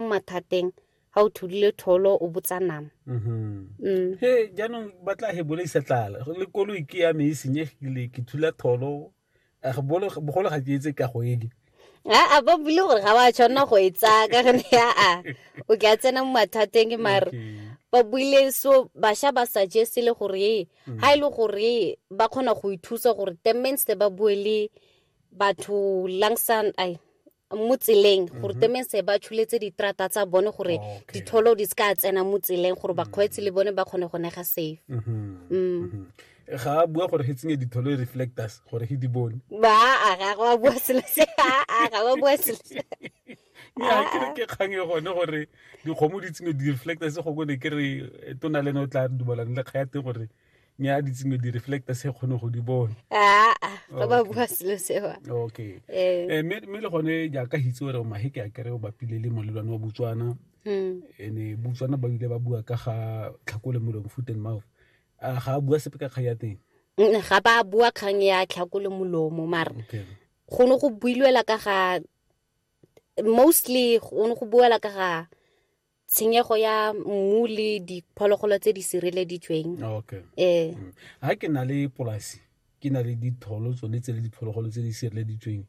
mo mathateng ga o thulile tholo o botsa nama mm-hmm. mm. he jaanong ba tla he bolaisa tlala le koloi ke ya me e senyegile ke thula tholo bogolo ga ke etse ka go eke a ba bule gore ga wa tshwanela go e tsaya ka gone aa o ke a tsena mo mathateng mare ba buile so basha ba suggest le gore mm. ha ile e gore ba kgona go ithusa gore the means ba bue le batho langsang ai mo tseleng mhm. gore temense ba tshuletse diterata tsa bone gore oh, ditholo di se ka tsena mo tseleng gore bakgweetsi le bone ba kgone go nega safe mhm. Mm. Mhm. ga a bua gore ge tsenye ditholo e reflectors gore ge di bone baa ga go a bua selo se aa ga go bua selo se ya ke re ke kgang e gone gore dikgomo di tsenye di-reflectors gongwe ne ke re eh, tona le ne o tla dumalane le kga ya teng gore mme a ditsengwe di reflecta se kgone go di bone aa fa ba bua selo sewa okay eh. Eh, mme le gone jaaka hitse gore maheke a kere o bapile le molelwane wa botswana hmm. ene botswana ba bile ba bua ka ga tlhakole molomo foot and mouth a ga a bua sepe ka kgang ya teng mm, ga ba bua kgang ya tlhakole molomo mara go ne go builwela ka ga mostly go ne go buela ka ga tshenyego ya mmu le diphologolo tse di sireleditsweng okay eh mm. ha ke na le polasi ke na le ditholo tsone tse le diphologolo tse di sireleditsweng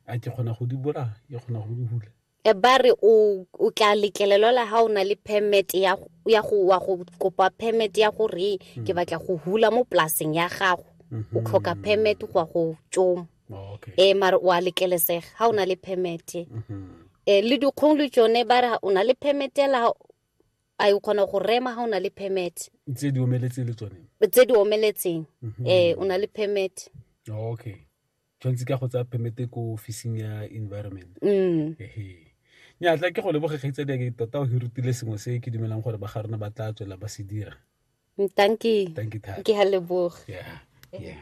a ke kgona go di bolaya ke kgona go di hula e ba re o o tla letlelelwa la ha o na le permit ya ya go wa go kopa permit ya gore mm. ke batla go hula mo polaseng ya gago o mm-hmm. tlhoka permit go go tsoma oh, okay. e mare o a lekelesega ga o na le permit e le dikgong le tsone ba re o na le permit ela a e kgona go rema ga o na le permit tse di omeletseng le tsone tse di omeletseng mhm. ee o na le permit oh, okay tshwanetse ka go tsaya permit ko officing ya environment mm. nya tla ke go leboge kgaitsa di ke tota o hirutile sengwe se ke dumelang gore ba ga rona ba tla tswela ba se dira thank you thank you ke ha leboge yeah yeah